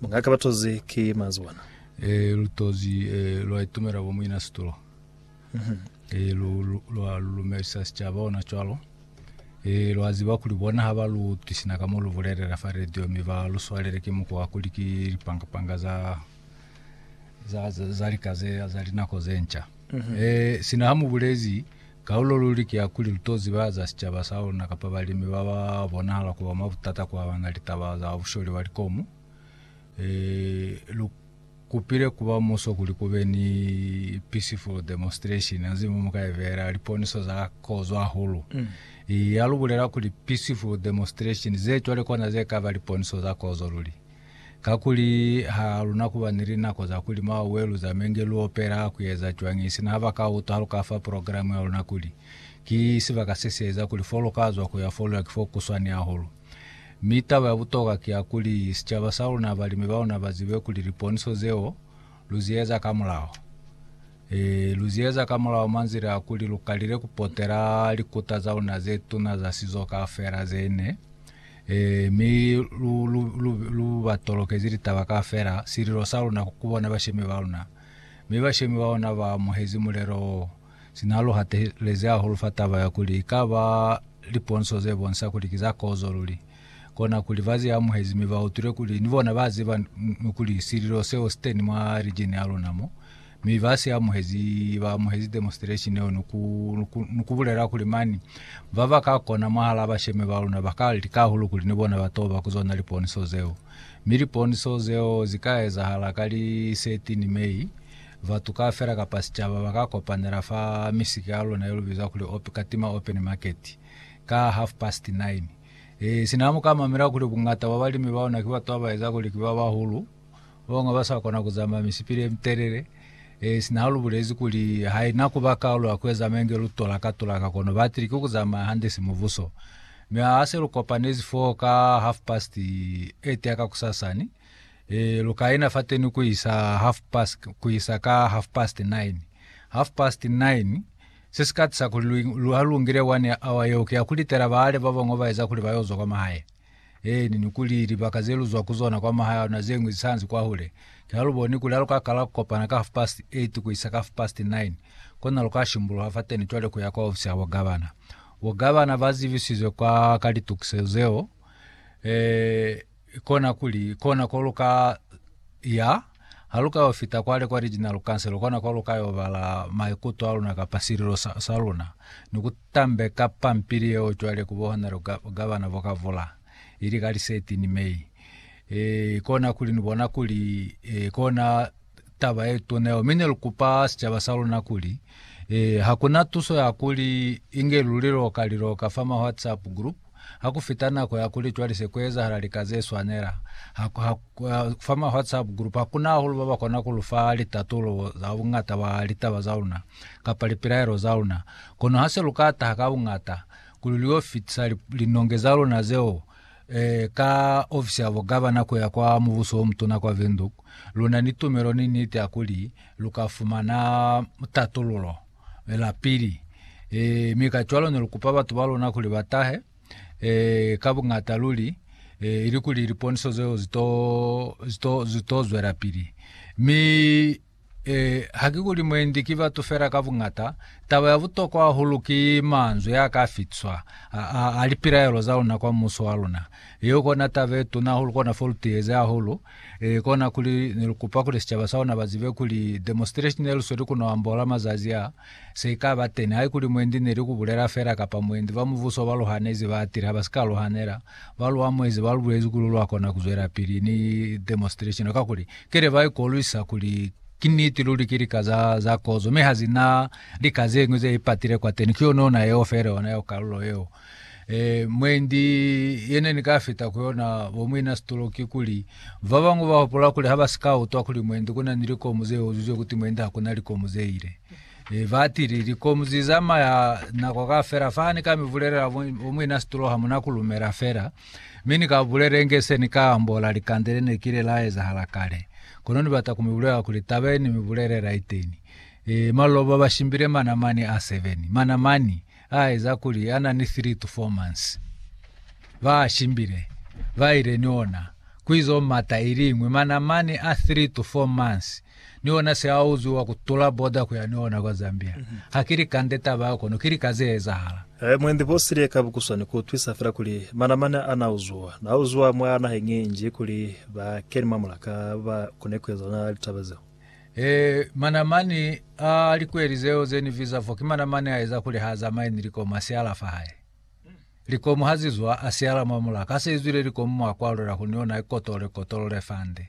Mungaka batozi ki manzwi bona. E, lutozi e, lwa itumela bo muina situlo. Mm -hmm. E, lu, lu, lwa lulumelisa sicaba ona cwalo. E, lwa ziba kuli bona ha ba lu tisina ka mo lu bulelela fa radio mi ba lu swalele ki muko wa kuli ki lipangapanga za za, za, za lika ze za linako ze nca. Mm -hmm. E, sina ha mu bulezi Kaulo luli ki ya kuli lu to ziba za sicaba sa luna kapa balimi ba ba bonahala ku ba mwa butata ku abana litaba za busholi bwa likomu. Ee, lu kupile ku ba muso kuli ku be ni peaceful demonstration ha nzi mu mu ka ibeela liponiso za kozo hahulu. Ee, ha lu bulela kuli peaceful demonstration, ze cwale kona ze ka ba liponiso za kozo luli. Kakuli ha lu na kuba ni linako za kuli mwa welu za menge lu opela ku eza cwañi sina ha ba ka utwa ha lu ka fa progilamu ya luna kuli, Ki sibaka se si eza kuli fo lu ka zwa ku ya fo lu ya ki fo ku swani hahulu. Mi taba ya butokwa ki ya kuli sicaba sa luna, balimi ba luna ba zibe kuli liponiso zeo lu zi eza ka mulaho. Ee, lu zi eza ka mulaho mwa nzila ya kuli lu kalile ku potela likuta za luna ze tuna za sizo kaufela ze ne Ee, mi lu, lu, lu, lu ba tolokezi litaba kaufela, sililo sa luna ku bona bashemi ba luna. Mi bashemi ba ona ba amuhezi mulelo wo. Sina lu hatelezi hahulu fa taba ya kuli ikaba liponso ze bonisa kuli ki za kozo luli, kona kuli ba zi amuhezi mi ba utwile kuli ni bona ba ziba kuli sililo seo si teni mwa rijini ya luna mo. Mi ba si amuhezi ba amuhezi demonstration yeo ni ku ni ku bulela kuli mani ba ba ka kona mwahala bashemi ba luna ba ka lika hahulu kuli ni bona ba toba ku zona liponiso zeo. Mi liponiso zeo zi ka ezahala ka li 13 May. Batu kaufela kapa sicaba ba ka kopanela fa misika ya luna ye lu biza kuli Op Katima Open Market ka half past nine. E, sina mu ka mamela kuli bungata bwa balimi ba luna ki batu ba ba eza kuli ki ba bahulu, Banga ba sa kona ku zamaya misipili ye mitelele, e sina ha lu bulezi kuli ha ina ku ba kaulu ya ku eza menge lu tulaka tulaka kono ba atile ki ku zamaya hande si mubuso. Mi ha se lu kopanezi fo ka half past 8 ya kakusasani, e lu ka ina fateni ku isa half past ku isa ka half past 9. Half past 9 se si ka tisa kuli lu, lu ha lu ngile one ya hour yeo ki ya ku litela baale ba banga ba eza kuli ba yo zwa kwa mahae. Eeni, ni kuli libaka ze lu zwa ku zona kwa mahaya a luna ze ñwi zi sa nzi kwahule. Ki ha lu boni kuli ha lu ka kala ku kopana ka half past eight ku isa ka half past nine, kona lu ka shimbuluha fateni cwale ku ya kwa ofisi ya bogavana. Bogavana ba zivisizwe kwa ka litukisezo zeo, e, kona kuli kona ko lu ka ya. Ha lu ka yo fita kwale kwa Regional Council, lu kona kwa lu ka yo bala maikuto a luna kapa sililo sa, sa luna, ni ku tambeka pampili yeo cwale ku bo Honorable Ga, Gavana Vokavula, ili ka li 13 May. E, kona kuli ni bona kuli e, kona taba ye tuna yeo. Mi ne lu kupa sicaba sa luna kuli e, ha kuna tuso ya kuli inge lu liloka liloka fa ma WhatsApp group, Ha ku fita nako ya kuli cwale se ku ezahala lika ze swanela, ha, ha, fa ma WhatsApp group, ha ku na hahulu ba ba kona ku lu fa litatulo za buñata bwa litaba za luna, kapa lipilaelo za luna. Kono ha se lu ka taha ka buñata, kuli lu yo fitisa li, linonge za luna zeo, eh, ka ofisi ya bo gabana ku ya kwa Mubuso o Mutuna kwa Windhoek, lu na ni tumelo ni niti ya kuli lu ka fumana tatululo. lapili. E, mi ka cwalo ne lu kupa batu ba lona kuli ba tahe e, ka buñata luli, e, ili kuli liponiso zeo zito, zito, zito zwelapili. Mi e, ha ki kuli mwendi ki batu fela ka buñata, taba ya butokwa hahulu ki manzwi a ka fitiswa a, a, a lipilaelo za luna kwa muso wa luna. Yeo kona taba ye tuna hahulu, kona fo lu tiyeze hahulu Ee, kona kuli ne lu kupa kuli sicaba sa ona ba zibe kuli demonstration ye lu sweli ku no ambola mazazi a, se i ka ba teni, haikuli mwendi ne li ku bulela fela kapa mwendi ba mubuso ba lu hanezi ba atile ha ba si ka lu hanela, ba lu amuhezi, ba lu bulezi kuli lwa kona ku zwelapili ni demonstration, kakuli ki ne ba ikolwisa kuli ki niti luli ki lika za, za kozo, mi ha zi na lika ze ñwi ze ipatile kwateni, ki yona ona yeo fela, ona yeo kalulo yeo. E, mwendi yene ni ka fita ku yona bo muina situlo ki kuli ba bangwe ba hopola kuli ha ba si ka utwa kuli mwendi kuna ni likomu ze uzuzwe kuti mwendi ha kuna likomu ze ile. E, ba tili likomu zi zamaya nako ka fela fa ni ka mi bulelela bo muina situlo ha muna ku lumela fela. Mi ni ka bulela inge se ni ka ambola likande le ne kile la ezahala kale. Kono ni bata ku mi bulela kuli taba ye ni mi bulelela iteni. E, maloba ba shimbile mana mani a 7. Mana mani. A eza kuli ana ni three to four months ba shimbile ba ile ni ona ku izo mata iliñwi mana mani a three to four months ni ona se a uziwa ku tula boda ku ya ni ona kwa Zambia mm -hmm. ha kili kande taba ya kono kili ka ze ezahala Eh, mwendi bosile ka bukuswani ku twisa fela kuli mana mani ana uzuwa na uzuwa mwa naheng ye nji kuli ba keni mwa mulaka ba kone ku ezana litaba zeo. Ee, manamani a likweli zeo ze ni viza fo ki manamani a eza kuli ha zamaye ni likomu ha siala fa hae. Likomu ha zi zwa, a siala mwa mulaka. Ha se izwile likomu mwa kwalula kuli ni ona ikotolole kotolole fande.